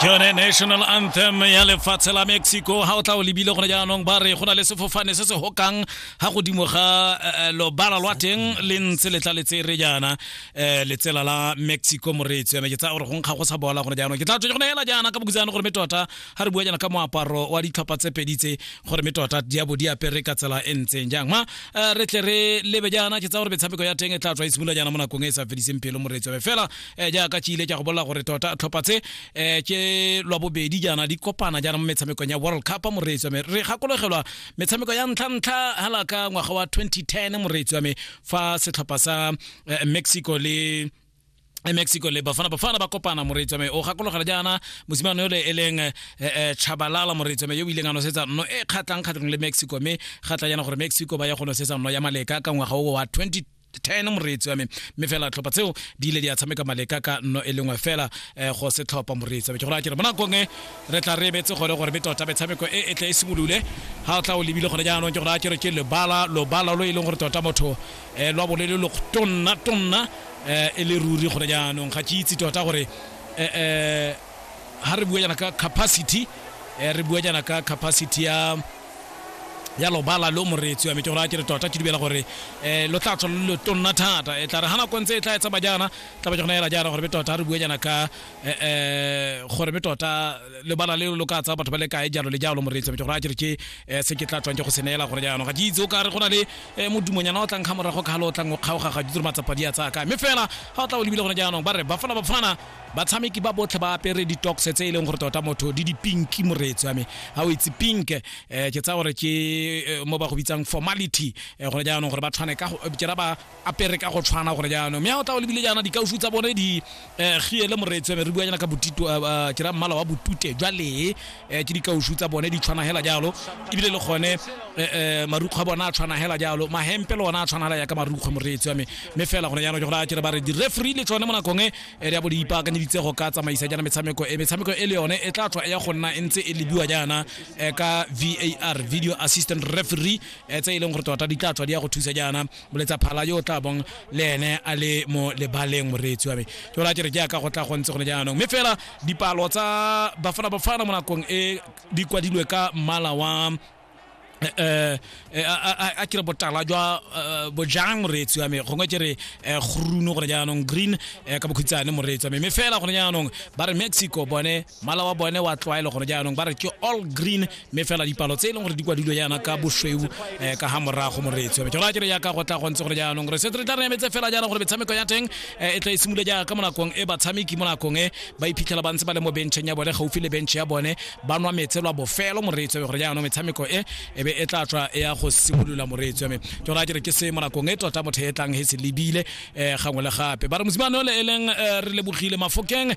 ke yone national anthem ya lefatshe la mexico ga o tla o lebile gone jaanong ba re go na le sefofane se se hokang ga godimo ga eh, eh, lobala lwa teng le ntse le tla le tsere jaana um letsela la mexico moreetsi yone ke tsaya gore go nkga go sa bola gone jaanong ke tla tswe go neela jaana ka bokutsane gore me tota ga re bua jana ka moaparo wa ditlhopha tse pedi tse gore me tota di abo di apere ka tsela e ntseng jang ma eh, re tle re lebe jana ke tsa gore metshameko ya teng e tla tswa e simolola jana mo nakong e e sa fediseng pelo moreetso be fela eh, jaaka tšile ke go bolela gore tota tlhopha tse eh, ke lwa bobedi jana di kopana jana mo metshamekong ya world cup moreetso me re gakologelwa metshameko ya ntlha-ntlha hala ka ngwaga wa 2010 moreetso me fa setlhopha sa mexico le e mexico le bafana bafana ba kopana moreetswa me o gakologela jaana mosimane yole e leng eh, eh, chabalala moreetswa me yo o ileng a nosetsa nno e kgatlhang kgatlhong le mexico mme ga tla jaana gore mexico ba ya go nosetsa nno ya maleka ka ngwaga o wa 20 ten moreetsi wa me mme fela tlhopha tseo di ile di a tshameka maleka ka nno e lengwe fela eh, go se tlhopha moreetsi wa me ke gore a kere mo nakong e re tla re ebetse gone gore be tota metshameko e e tle e simolole ga o tla o lebile gone jaanong ke gore a kere ke lebala lobala lo e leng gore tota motho eh, lwa bo le le lotonna tonna eh, e le ruri gone jaanong ga ke itse tota gore eh, eh, ha re bua jana ka capacity eh, re bua jana ka capacity ya ya lobala lo moreetsi wa me ke gore a ke re tota ke dibela gore um lo tla tswa lo le tonna thata e tla re ga nako ntse e tla e tsaba jaana tla ba ke gona ela jaana gore be tota re bue jaana ka eh, eh, gore me tota lebala le lo ka tsa batho ba le kae jalo le jalo moreetsi metse gore a kere ke eh, se ke tla tswang ke go seneela gore jaanong ga ke itse o ka re go na le eh, modumonyana o tlang ga morago ka galo o tlang o kgaoga ga ditiro matsapa di a tsaya kae mme fela ga o tla o lebile gone jaanong ba re bafana bafana batshameki ba botlhe ba apere ditox tse e leng gore tota motho di dipinki moreetsi wa me ga o itse pink eh, ke tsaya gore ke eh, mo ba go bitsang formality eh, gone jaanong gore ba tshwane ka go- eh, ke ra ba apere ka go tshwana gore jaanong mme a o tla o lebile jaana dikaufu tsa bone di eh, giele moreetsi re bua jaana ka botito eh, eh, ke ra mmala wa botute jwa lee eh, ke dikaufu tsa bone di tshwana hela jalo ebile le gone eh, eh, marukgwe a bone a tshwana hela jalo mahempe le ona a tshwana hela yaka marukgwe moreetsi wa me mme fela gone jaanong ke gore a kere ba re di-referee le tsone mo nakong e eh, di a bo di ipaakanyeditse go ka tsamaisa jaana metshameko e metshameko e le yone e tla tswa e ya go nna e ntse e lebiwa jaana eh, ka var video assistant referee eh, tse e leng gore tota di tla tswa di ya go thusa jaana moletsa phala yo o tla bong le ene a le mo lebaleng moreetsi wa me ke bola ke re jaaka go tla go ntse gone jaanong mme fela dipalo tsa bafana bafana mo nakong e di kwadilwe ka mmala wa eh a kire botala jwa eh, bojang moreetsi wa me gongwe ke re eh, groen gone jaanong green eh, ka bokhutshwane moreetsi wa me mme fela gone jaanong ba re mexico bone Mmala wa bone wa tlwaelo gone jaanong ba re ke all green mme fela dipalo tse e leng gore di kwadilwe yana ka bosweu eh, ka ga morago moreetswe ke go akere yaka go tla go ntse gore jaanong re setse re tla re emetse fela jaana gore metshameko ya teng eh, e tla e simole jaaka mo nakong e batshameki mo nakong e ba iphitlhela ba ntse ba le mo bentšheng ya bone gaufi le bentšhe ya bone ba nwa metse lwa bofelo moreetswe gore jaanong metshameko e e be e tla tswa e ya go simolola moreetswe me ke gore akere ke se mo nakong e tota motho e tlang he se lebile eh, gangwe le gape ba re mosimane ole e leng eh, re lebogile mafokeng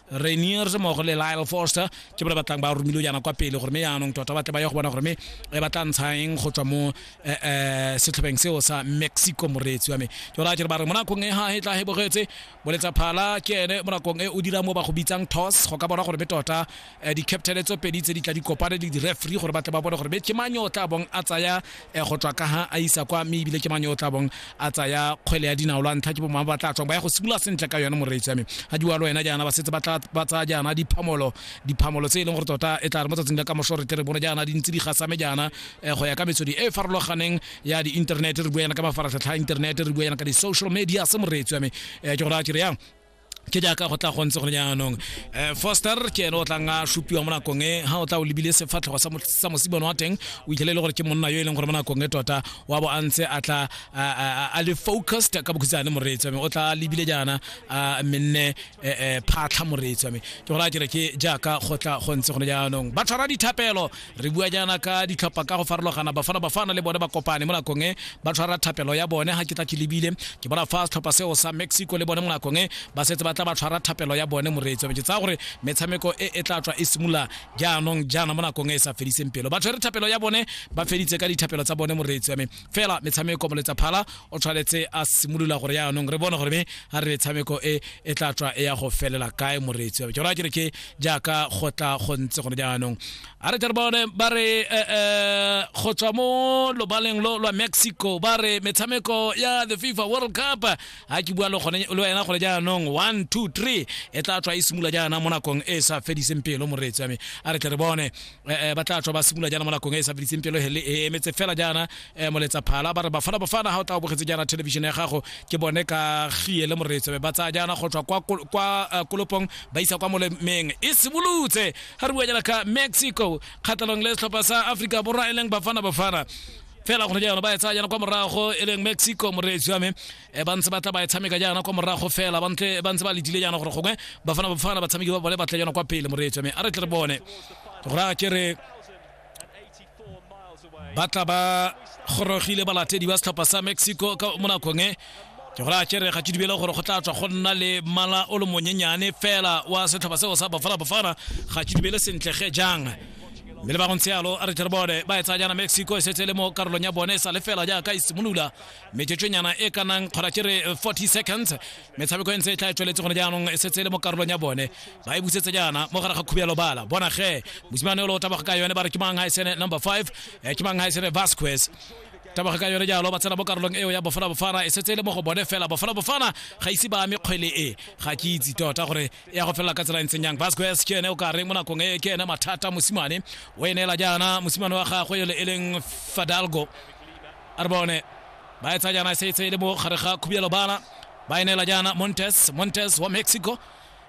rainiers mmogo le lyle forster ke bone batlang ba romile jaana kwa pele gore me yaanong tota batle ba ye go bona gore me e ba tla ntshang go tswa mo eh, eh, setlhopheng seo sa mexico moreetsi wa me ke gore a kere ba re mo nakong e ga e tla e bogetse boletsa phala ke ene mo nakong e o dira mo ba go bitsang toss go ka bona gore me tota eh, di-captain tso pedi tse di tla di kopane le di-referee gore batle ba bone gore me ke mang yo o tla bong a tsaya e go tswa ka ha a isa kwa mme ebile ke mane o tla bong a tsaya kgwele ya dinao lwa ntlha ke bomangwe ba tla tswang ba ya go simolola sentle ka yone moreetsi ya me ga di walo wena jaana ba setse ba tsaya jaana diphamolo diphamolo tse e leng gore tota e tla re mo tsatsing la ka moso re tle re bone jaana di ntse di gasame jaana eh, go ya ka metswedi e e farologaneng ya di-internet re bua yana ka mafaratlhatlha a internet re bua yana ka di-social media se moreetsi ya me eh, ke gore a kere yang ke jaaka go tla go ntse gone jaanong um foster ke ene o tlang a supiwa mo nakong e ga o tla o lebile sefatlhego sa mosibone wa teng o itlhele e le gore ke monna yo e leng gore mo nakong e tota wa bo a ntse a tla a le focused ka bokhutsane moreetsi wa me o tla lebile jaana a menne e, e, phatlha moreetsi wa me ke gore a kere ke jaaka go tla go ntse gone jaanong ba tshwara dithapelo re bua jaana ka ditlhopha ka go farologana bafana bafana le bone ba kopane mo nakong e ba tshwara thapelo ya bone ga ke tla ke lebile ke bona fa setlhopha seo sa mexico le bone mo nakong e ba setse ba tla ba tshwara thapelo ya bone moreetso ke tsaya gore metshameko e e tla tswa e simolola jaanong jaana mo nakong e e sa fediseng pelo ba tshwere thapelo ya bone ba feditse ka dithapelo tsa bone moreetso ya me fela metshameko moletsaphala o tshwanetse a simolola gore yaanong re bone gore me a re metshameko e e tla tswa e ya go felela kae moreetsi wa jona kere ke jaaka go tla go ntse gone jaanong a re tle re bone ba re eh, eh, go tswa mo lobaleng lo lwa mexico ba re metshameko ya the fifa world cup a ke bua le gone- le wena gone jaanong one two three e tla tswa e simolola jaana mo nakong e e sa fediseng pelo moreetsi wa me a re tle re bone eh, ba tla tswa ba simolola jaana mo nakong e e sa fediseng pelo hele e emetse fela jaana eh, moletsa phala ba re bafana bafana ga o tla o bogetse jaana television ya gago ke bone ka gie le moretso be ba tsaya jaana go tswa kwa kol- kwa eh, kolopong ba isa kwa molemeng e simolotse ga re bua jaana ka mexico kgatlhanong le setlhopha sa aforika borwa e leng bafana bafana fela gone jaana ba e tsaya jaana kwa morago e leng mexico moreetsi wa me e ba ntse ba tla ba e tshameka jaana kwa morago fela ba ntse ba ntse ba letile jaana gore gongwe ba fana ba fana batshameki ba bone ba tla jaana kwa pele moreetso mme a re tle re bone gore a ke re ba tla ba gorogile balatedi ba setlhopha sa mexico ka mo nakong e ke gore a kere ga ke dibele gore go tla tswa go nna le mala o le monyenyane fela wa setlhopha seo sa bafana bafana ga ke dibele sentle ge jang mme le ba go ntse yalo a re tlhere bone ba e tsaya jaana mexico e setse le mo karolong ya bone e sa le fela jaaka e simolola metsotsonyana e ka nang kgona ke re 40 seconds metshameko e ntse e tla e tsweletse gone jaanong e setse e le mo karolong ya bone ba e busetse jaana mo gare ga khubelo bala bona ge mosimane o le o tabaga ka yone ba re ke mang gaisene number 5 eh, ke mang gaisene vasquez tabaga ka yone jalo ba tsena mo karolong eo ya bofala bofana e setse e le mo go bone fela bofala bofana ga ise ba ame kgwele e ga ke itse tota gore e ya go felela ka tsela e ntseng yang vasquez ke ene o ka reng mo nakong e ke ene mathata mosimane o e neela jaana mosimane wa gagwe yo le e leng fadalgo a re bone ba etsa jaana se tse le mo gare ga khubielo bana ba e neela jaana montes montes wa mexico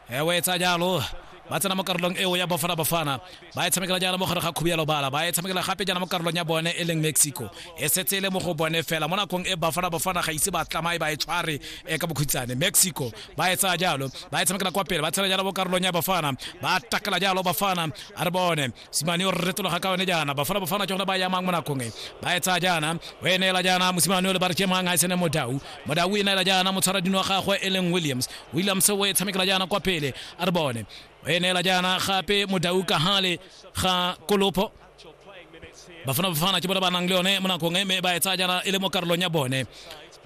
e o etsa jalo ba tsena mo karolong eo ya bafana bafana ba e tshamekela jaana mo gare ga khubielo bala ba e tshamekela gape jaana mo karolong ya bone e leng mexico e setse e le mo go bone fela mo nakong e bafana bafana ga ise ba tlamae ba e tshware e ka bokhutsane mexico ba e tsaya jalo ba e tshamekela kwa pele ba tshela jalo mo karolong ya bafana ba takela jalo bafana a re bone mosimane o re retologa ka yone jaana bafana bafana ke gone ba yamang mo nakong e ba e tsaya jaana o e neela jaana mosimane o le ba re kemang ga e sene modau modau e neela jaana motshwara dino wa gagwe e leng williams williams o e tshamekela jaana kwa pele a re bone o e neela jaana gape modau ka gale ga kolopho bafana bafana ke bone ba nang le yone mo nakong e mme ba e tsaya jaana e le mo karolong ya bone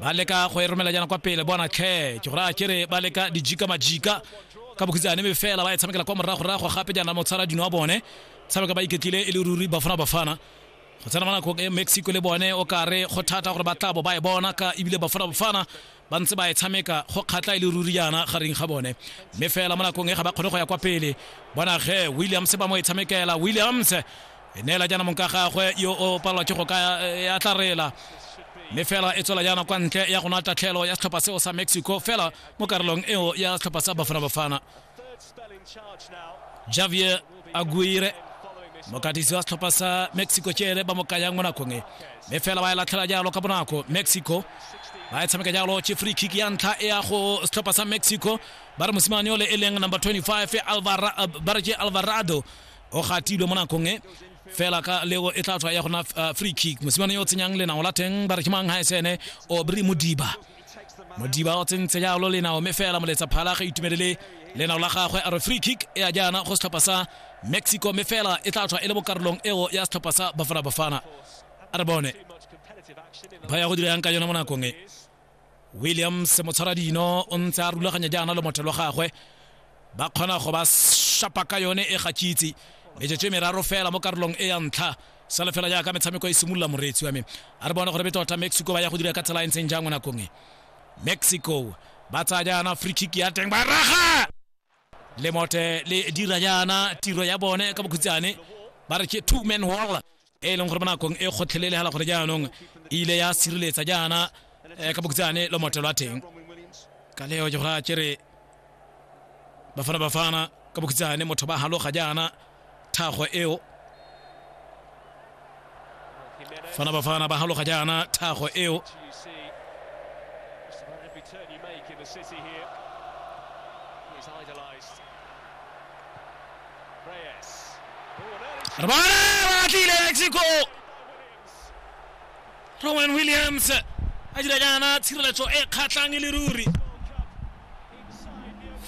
ba leka go e romela jaana kwa pele bona tlhe ke gore a kere ba leka dijika majika ka bokhutsane me fela ba e tshamekela kwa moragorago gape jaana motshwara dino wa bone tshameka ba iketlile e le ruri bafana bafana go tsena mo nakong e mexico le bone o kare go thata gore ba tla bo ba e bona ka ebile bafana bafana ba ntse ba e tshameka go kgatla e le ruri jaana gareng ga bone mme fela mo nakong e ga ba kgone go ya kwa pele bona ge williams ba mo e tshamekela williams e neela jaana mong ka gagwe yo o palelwa ke go ka e atla reela mme fela e tswela jaana kwa ntle ya go nwa tatlhelo ya setlhopha seo sa mexico fela mo karolong eo ya setlhopha sa bafana bafana javier aguire mokatisi wa setlhopha sa mexico tšele ba mo kayang mo nakong e mme fela ba e latlhela jalo ka bonako mexico ba e tshameka jalo ke free kick ya ntlha e ya go setlhopha sa mexico ba re mosimane ole e leng number 25 Alvara, uh, ba re ke alvarado o gatilwe mo nakong e fela ka leo e tla tswa ya gona uh, free kick mosimane yo o tsenyang lenao la teng ba re ke mang ga esene obry modiba modiba o tsentse jalo lenao mme fela moletsa phala ga itumelele lenao la gagwe a re free kick e a jaana go setlhopha sa mexico mme fela e tla tswa e le mo karolong eo ya setlhopha sa bafana bafana a re bone ba ya go dira yang ka yone mo nakong e williams motshwara dino o ntse a rulaganya jaana le motho lo gagwe ba kgona go ba shapa ka yone e gakitse metsotso e meraro fela mo karolong e ya ntlha sale fela jaaka metshameko e simolola moreetsi wa me a re bone gore betota mexico ba ya go dira ka tsela e ntseng jang mo nakong e mexico ba tsaya jaana free kick ya teng ba raga lemote le dira jaana tiro ya bone ka bokhutshane ba re ke two man wall e e leng gore mo nakong e kgotlhelelegala gore jaanong e ile ya sireletsa jaana eh, ka bokhutshane lomote lwa teng ka leo ke gore a kere bafana bafana ka bokhutshane motho ba haloga jaana thago eo fana bafana ba haloga jaana thago eo re bone ba tlile mexico rowan williams a dira jaana tshireletso e kgatlhang e le ruri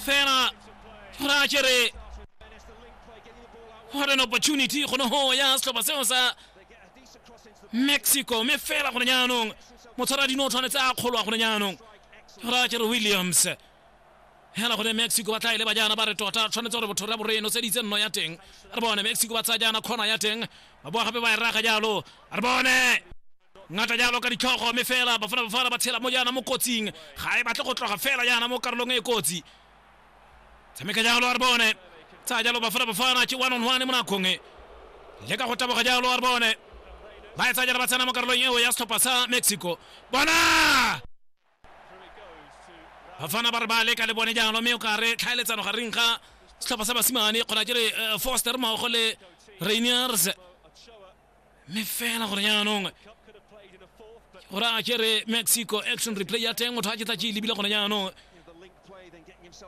fela ra kere what an opportunity go ne go ya setlhopha seo sa mexico mme fela gone jaanong motshwara dino o tshwanetse a kgolwa gone jaanong ra kere williams hela gone mexico ba tla e leba jaana ba re tota tshwanetse gore botho ra boreno seditse nno ya teng re bone mexico ba tsaya jaana kgona ya teng ba boa gape ba e raga jalo re bone ngata jalo ka ditlhogo mme fela bafana bafana ba tshela mo jaana mo kotsing ga e batle go tloga fela jaana mo karolong e kotsi tshameka jalo a re bone tsaya jalo bafana bafana ke one on one mo nakong e le ka go taboga jalo a re bone ba e tsaya jalo ba tsena mo karolong eo ya setlhopha sa mexico bona bafana ba re ba leka le bone jalo mme o ka re tlhaeletsano gareng ga setlhopha sa basimane kgona ke re eh, foster mmogo le rainiers mme fela gore jaanong gore a kere mexico action replay ya teng motho a ke tla ke e lebile gone jaanong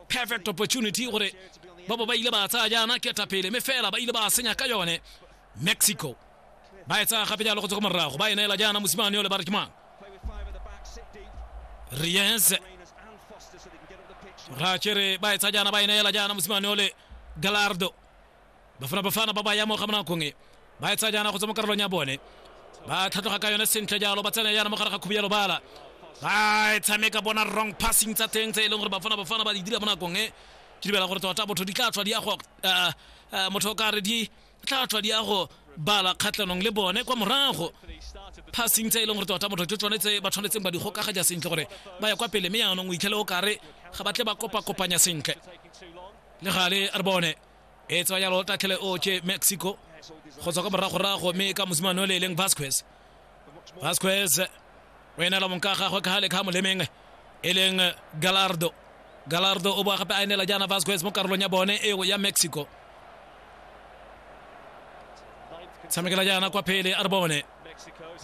perfect opportunity gore ba bo ba ile ba tsaya jaana ketapele mme fela ba ile ba senya ka yone mexico ba e tsaya gape jalo go tswa ko morago ba e neela jaana mosimane yo le ba re ke mang ries ra kere ba e tsaya jaana ba e neela jaana mosimane yo le galardo Bafana Bafana ba ba ya mo ga monakong e ba etsa jaana go tswa mo karolong ya bone ba tlhatlhoga ka yone sentle jalo ba tsena yana mo gare ga khubi ya lobala ba e tshameka bona wrong passing tsa teng tse e leng gore bafana bafana ba di dira mo nakong e ke dibela gore tota botho di tla tswa di ya go motho o kare di tla tswa di ya go bala kgatlhanong le bone kwa morago passing tse e leng gore tota motho ke tsone tse ba tshwanetseng ba di gokaga ja sentle gore ba ya kwa pele mme yanong o itlhele o kare ga ba tle ba kopa kopanya sentle le gale re bone e tswa jalo tatlhele o ke mexico go tswa ka moragorago mme ka mosimane o le e leng vasquez vasquez o enela monka gagwe ka gale ka molemeng e leng galardo galardo o boa gape a enela jaana vasquez mo karolong ya bone eo ya mexico tshamekela jaana kwa phele a re bone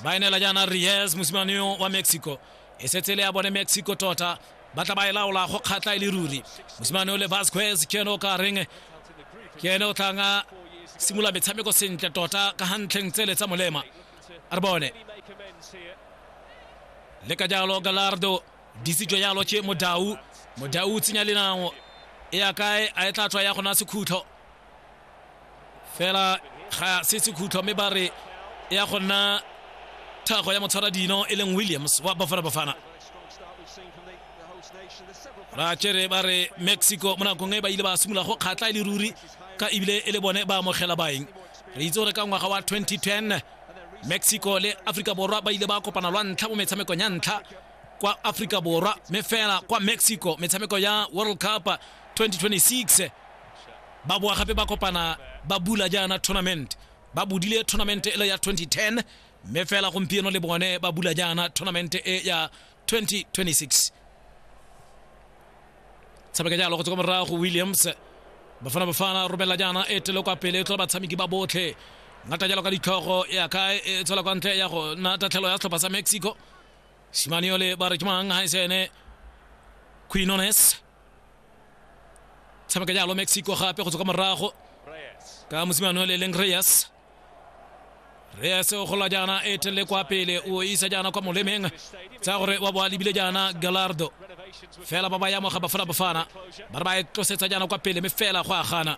ba enela jaana ries mosimane wa mexico e setse le ya bone mexico tota ba tla ba e laola go kgatla e le ruri mosimane o le vasquez ke ene o ka reng ke ene o tlang a simolola metshameko sentle tota ka gantlheng tsele tsa molema a re bone le ka jalo galardo disitswe jalo ke modau modau o tsenya lenao e ya kae a e tla tswa ya gona sekhutlo fela ga se sekhutlo mme ba re e ya go nna thago ya motshwara dino e leng williams wa bafana bafana ra tsere ba re mexico mo nakong e ba ile ba simolola go kgatla e le ruri ka ebile e le bone ba amogela baeng re itse gore ka ngwaga wa 2010 mexico le aforika borwa ba ile ba kopana lwa ntlha mo metshamekong ya ntlha kwa aforika borwa mme fela kwa mexico metshameko ya world cup 2026 ba boa gape ba kopana ba bula jaana tournament ba budile tournament e le ya 2010 mme fela gompieno le bone ba bula jaana tournament e ya 2026 tshameka jalo go tswa kwa morago williams bafana bafana romela jaana e tele kwa pele e tlhola batshameki ba botlhe ngata jalo ka ditlhogo ya ka e tswela kwa ntle ya go na tatlhelo ya setlhopha sa mexico simane yole ba re ke mang ha e sene quinones tshameka jalo mexico gape go tswa ka morago ka mosimane o le leng reyes reyes o gola jaana e telele kwa pele o isa jaana kwa molemeng tsa gore wa boa lebile jaana galardo fela ba ba ya moga bafana bafana ba re ba e tlosetsa jaana kwa pele mme fela go a gana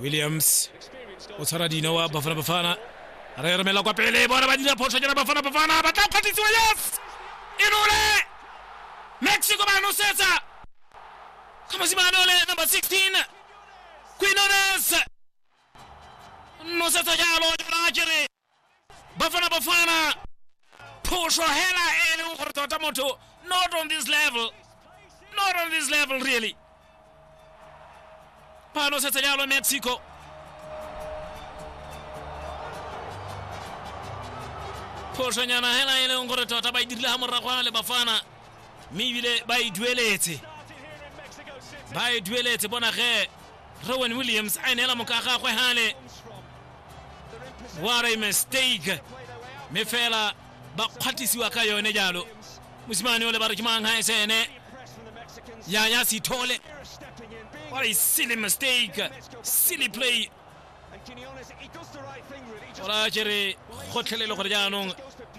williams o tshwara dino wa bafana bafana re romela kwa pele bona ba dira phoso jana bafana bafana ba tla kgwatlisiwa yes inole mexico ba nosetsa ka mosimane ole number 16 quinones nosetsa jalo jana kere bafana bafana phusho hela e leng gore tota motho not on this level not on this level really ba nosetsa jalo mexico phošonyana hela e leng gore tota ba e dirile ga moragwana le bafana mme ebile ba e dueletse ba e dueletse bona ge rowan williams a neela moka gagwe gale what a mistake mme fela ba kgwatlisiwa ka yone jalo mosimane ole ba re ke mang ga esene ya ya sithole what a silly mistake silly play ola kere gotlhelele gore jaanong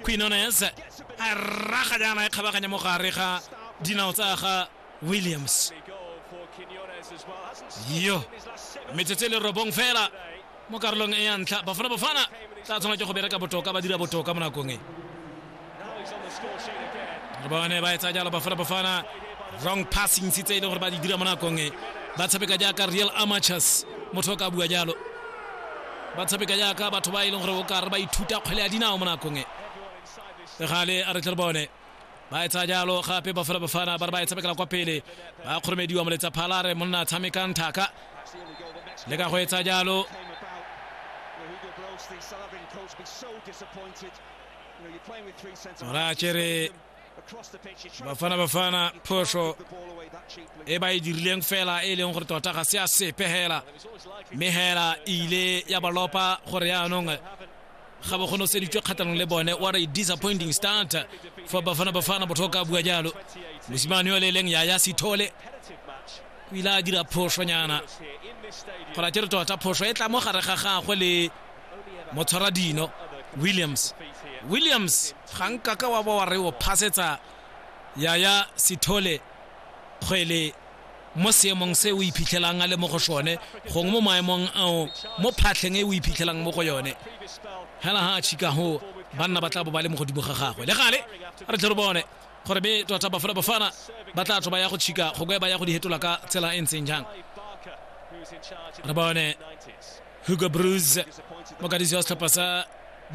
quinones a raga jaana e kgabaganya mo gare ga dinao tsa ga williams yo metsotso e le robong fela mo karolong e ya ntlha bafana bafana tla tshwana ke go bereka botoka ba dira botoka mo nakong e re bone ba etsa jalo bafana bafana wrong passing tse e le gore ba di dira mo nakong e ba tshameka jaaka real amateurs motho o ka bua jalo ba tshameka jaaka batho ba e leng gore o kare ba ithuta kgwele ya dinao mo nakong e gale a re tle re bone ba etsa jalo gape ba fela bafana ba re ba e tshamekela kwa pele ba kgoromediwa moletsa phalare monna tshamekang thaka le ka go etsa jalo ra kere bafana bafana phoso e ba e dirileng fela e leng gore tota ga se a sepe hela mme hela e ile ya ba lopa gore yaanong ga ba kgone seditswe kgatlhanong le bone what a disappointing start for bafana bafana botho ka bua jalo mosimane yo le eleng yaya sethole o ile a dira phošonyana gore a kere tota phoso e tla mo gare ga gagwe le motshwara dino williams williams ga nka ka wa ba wa re o phasetsa yaya sethole kgwele mo seemong se o iphitlhelang a le mo go sone gongwe mo maemong ao mo phatlheng e o iphitlhelang mo go yone hela ha a chika go banna ba tla bo ba le mo godimo ga gagwe le gale re tle re bone gore be tota bafana bafana ba tla tswa ba ya go chika go ba ya go di hetola ka tsela e ntseng jang re bone hugo bruce mokadisi wa setlhopha sa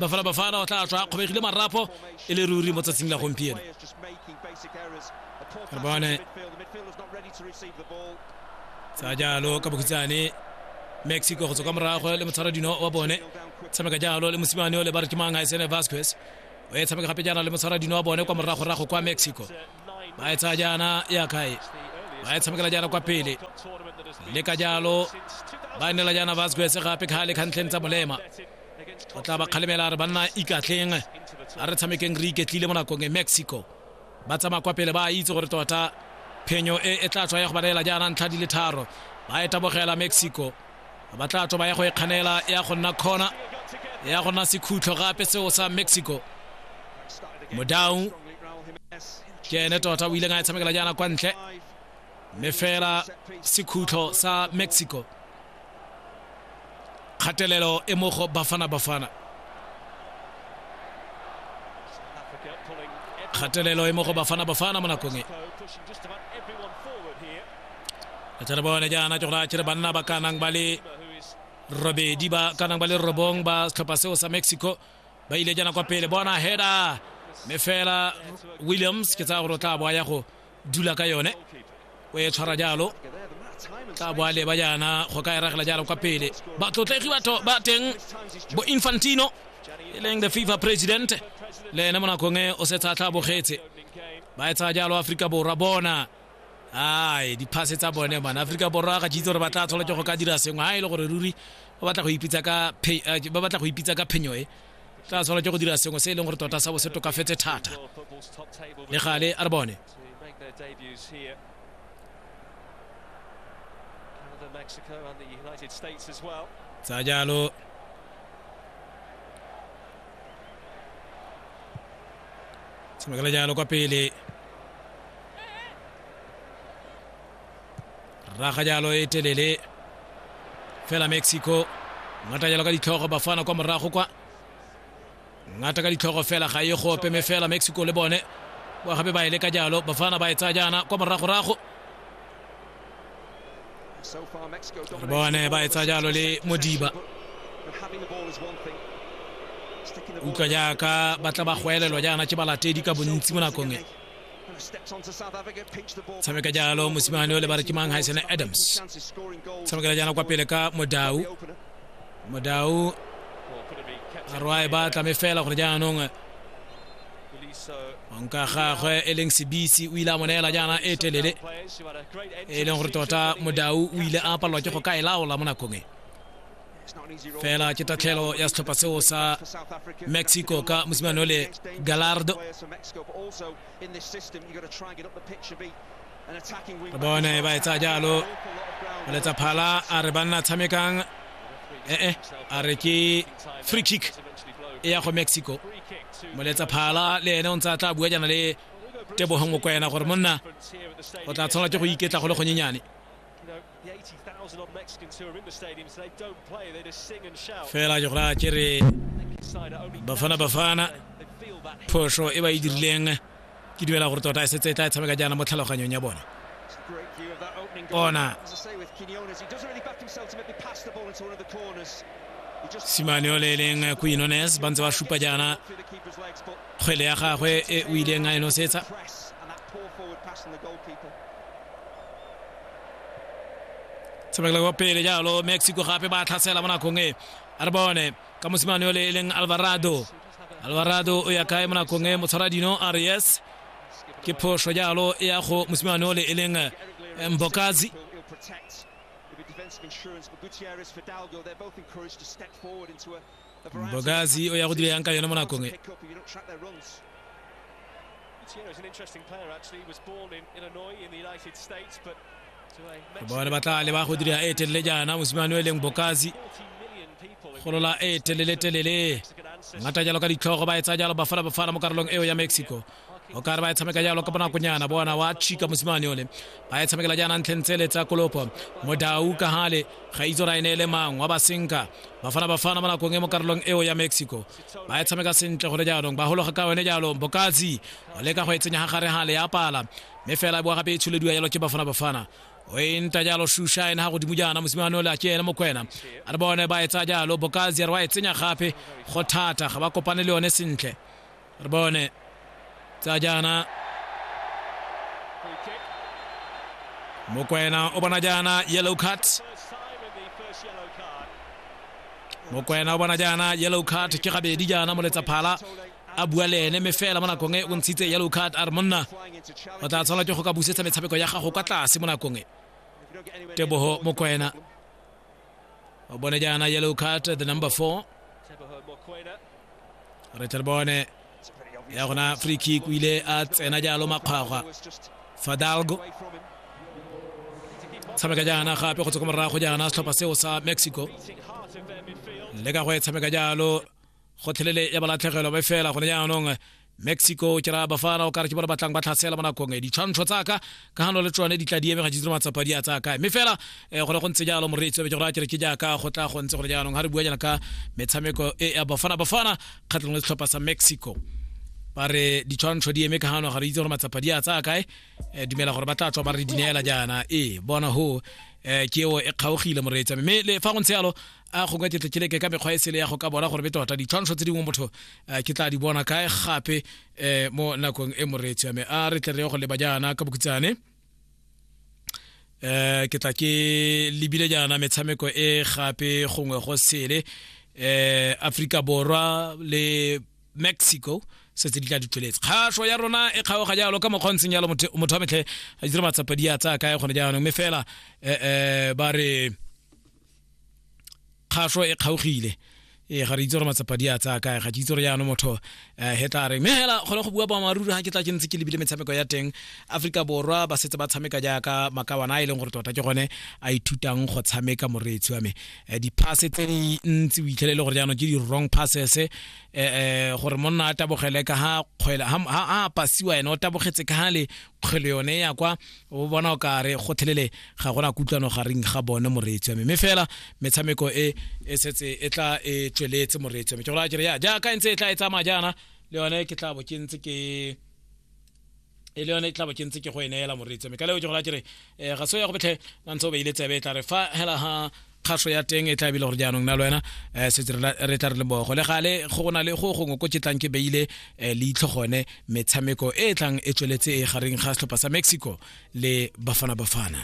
bafala bafana o tla tswa kgobegile marapo e le ruri mo tsatsing la gompieno re bone tsa jalo ka bokhutsane mexico go tswa ka morago le motshwara dino wa bone tshameka jalo le mosimane o le ba re ke mang a e sene vasquez o e tshameka gape jaana le motshwara dino wa bone kwa moragorago kwa mexico ba e tsaya jaana ya kae ba e tshamekela jaana kwa pele le ka jalo ba nela jaana vasquez gape kgale kgantlheng tsa molema o tla ba kgalemela a re banna ikatleng a re tshamekeng re iketlile mo nakong e mexico ba tsamaya kwa pele ba itse gore tota phenyo e e tla tswa ya go ba neela jaana ntlha di le tharo ba e tabogela mexico ba tla tswa ba ya go e kganela ya go nna corner ya go nna sekhutlo gape seo sa mexico modau ke ene tota o ileng a e tshamekela jaana kwa ntle mme fela sekhutlo sa mexico kgatelelo e mo go bafana bafana kgatelelo e mo go bafana bafana mo nakong e a tsere bone jaana ke gore a kere banna ba ka nang ba le robedi ba ka nang ba le robong ba setlhopha seo sa mexico ba ile jaana kwa pele bona heda mme fela williams ke tsaya gore o tla boa ya go dula ka yone o e tshwara jalo tla boa leba jaana go ka eragela jalo kwa pele batlotlegi batho ba teng bo infantino e leng the fifa president le ene mo nakong e o setse a tla bogetse ba e tsaya jalo aforika borwa bona ai diphase tsa bone man aforika borwa ga jeitse gore ba tla tshola ke go ka dira sengwe ga e le gore ruri ba batla go ipitsa ka eh, ba batla go ipitsa ka phenyo e tla tshola ke go dira sengwe se e leng gore tota sa bo se tokafetse thata le gale a re bone tsa jalo tshamekela jalo kwa pele raga jalo e telele fela mexico ngata jalo ka ditlhogo bafana kwa morago kwa ngata ka ditlhogo fela ga e gope me fela mexico le bone wa gape ba e le ka jalo bafana ba e tsaya jaana kwa moragorago re bone ba e tsaya jalo le modiba utlwa jaaka ba tla ba goelelwa jaana ke balatedi ka bontsi mo nakong e tshameka jalo mosimane o le ba re ke mang haisene adams tshamekela jana kwa pele ka modau modau arwae ba tlame fela gore jaanong nka gagwe e leng sebisi o ile a mo neela jaana e telele e leng gore tota modau o ile a palelwa ke go ka e laola mo nakong e fela ke tatlhelo ya setlhopha seo sa mexico ka mosimane o le galardo re bone ba etsa jalo o letsa phala a re banna tshamekang ee a re ke free kick e ya go mexico moletsa phala le ene o ntse a tla bua jana le tebogong o kwena gore monna o tla tshwanela ke go iketla go le gonyenyane Fela Jokla Kiri Bafana Bafana phoso e ba e dirileng ke dumela gore tota e setse e tla e tshameka jaana mo tlhaloganyong ya bone bona simane o le e leng quinones ba ntse ba supa jaana kgwele ya gagwe e o ileng a e nosetsa tshamekela kwa pele jalo mexico gape ba tlhasela mo nakong e a re bone ka mosimane yole e leng alvarado alvarado o ya kae mo nakong e motshwara dino a re yes ke phoso jalo e ya go mosimane yole e leng eh, mbokazi mbogasi o ya go dira yang ka yone mo nakong e bone ba tla leba go dira e telele jaana mosimane o e leng bokasi golola e telele-telele ngata jalo ka ditlhogo ba e tsaya jalo bafala bafala mo karolong eo ya mexico o kare ba e tshameka jalo ka bonakonyana bona wa chika mosimane one ba e tshamekela jaana ntlheng tsele tsa kolopo modau ka gale ga itse gore a e ne e le mang wa basenka bafana bafana mo nakong e mo karolong eo ya mexico ba e tshameka sentle gone jaanong ba gologa ka one jaanong bokatsi o leka go e tsenya ga gare gale ya pala mme fela e boa gape e tsholediwa jalo ke bafana bafana o e nta jalo shusha ene ga godimo jaana mosimane ole a ke ene mokwena a re bone ba e tsaya jalo bokatsi a re wa e tsenya gape go thata ga ba kopane le yone sentle re bone tsa jaana mokwena o bona jaana yellow card mokwena o bona jaana yellow card ke gabedi jaana moletsaphala a bua le ene me fela mo nakong e o ntshitse yellow card a re monna o tla tshwanela ke go ka busetsa metshameko ya gago kwa tlase mo nakong e tebogo mokwena o bone jaana yellow card the number four re tle re bone ya gona free kick o ile a tsena jalo makgwagwa fadalgo tshameka jaana gape go tswa ko morago jaana setlhopha seo sa mexico le ka go e tshameka jalo gotlhelele ya balatlhegelwa ba fela gone jaanong mexico ke raya bafana o kare ke bona batlang ba tlhasela mo nakong e ditshwantsho tsaka ka gano le tsone di tla di eme ga jitsire matsapa di a tsaya kae mme fela um go ne go ntse jalo moreetsi be ke go raya kere ke jaaka go tla go ntse gore jaanong ga re bua jana ka metshameko e ya bafana bafana kgatlhong le setlhopha sa mexico ba re ditshwantsho di eme ka gano ga re itse gore matsapa di a tsaya kae eh, dumela gore ba tla tswa ba re di neela jaana ee bona ho um ke eo e kgaogile moreetsi mme le fa go ntse jalo a gongwe ke tlekeleke ka mekgwa e sele ya go ka bona gore be tota ditshwantsho tse dingwe motho eh, ke tla di bona kae gape eh, mo nakong e moreetsi yame a re tle re go leba jaana ka bokutsane um eh, ke tla ke lebile jaana metshameko e gape gongwe go sele um aforika borwa le mexico setse di tla di tsweletse kgaso ya rona e kgaoga jalo ka mokgwa ntsheng jalo motho wa metlhe a dire matsapa di a tsaya kae gone jaanong mme fela um ba re kgaso e kgaogile ee ga re itse gore matsapa di a tsaya kae ga ke itse gore jaanong motho um he tla re mme fela kgone go bua boammaaruri ga ke tla ke ntse ke lebile metshameko ya teng aforika borwa ba setse ba tshameka jaaka makawana a e leng gore tota ke gone a ithutang go tshameka moreetsi wa me um di-passe tse di ntsi o itlhelele gore jaanong ke di-wrong passes um gore monna a tabogele ka ga kgwele ga a pasiwa ene o tabogetse ka ga le kgwele yone ya kwa o bona o kare go thelele ga gona kutlwano gareng ga bone moreetsi wa me mme fela metshameko e e setse e tla e tsweletse moreetsi wa me ke gora kere ya jaaka e ntse e tla e tsamaya jaana le yone ke tla bo ke ntse ke e le yone e tla bo ke ntse ke go e neela moreetsi wa me ka leo ke gora kere um ga se ya go betlhe la ntse o beile tsebe e tla re fa hela ha kgaso ya teng e tla bile gore jaanong na le wena um setse re tla re lebogo le gale go go na le go gongwe ko tlang ke beile um leitlho gone metshameko e e tlang e tsweletse e gareng ga setlhopha sa mexico le bafana bafana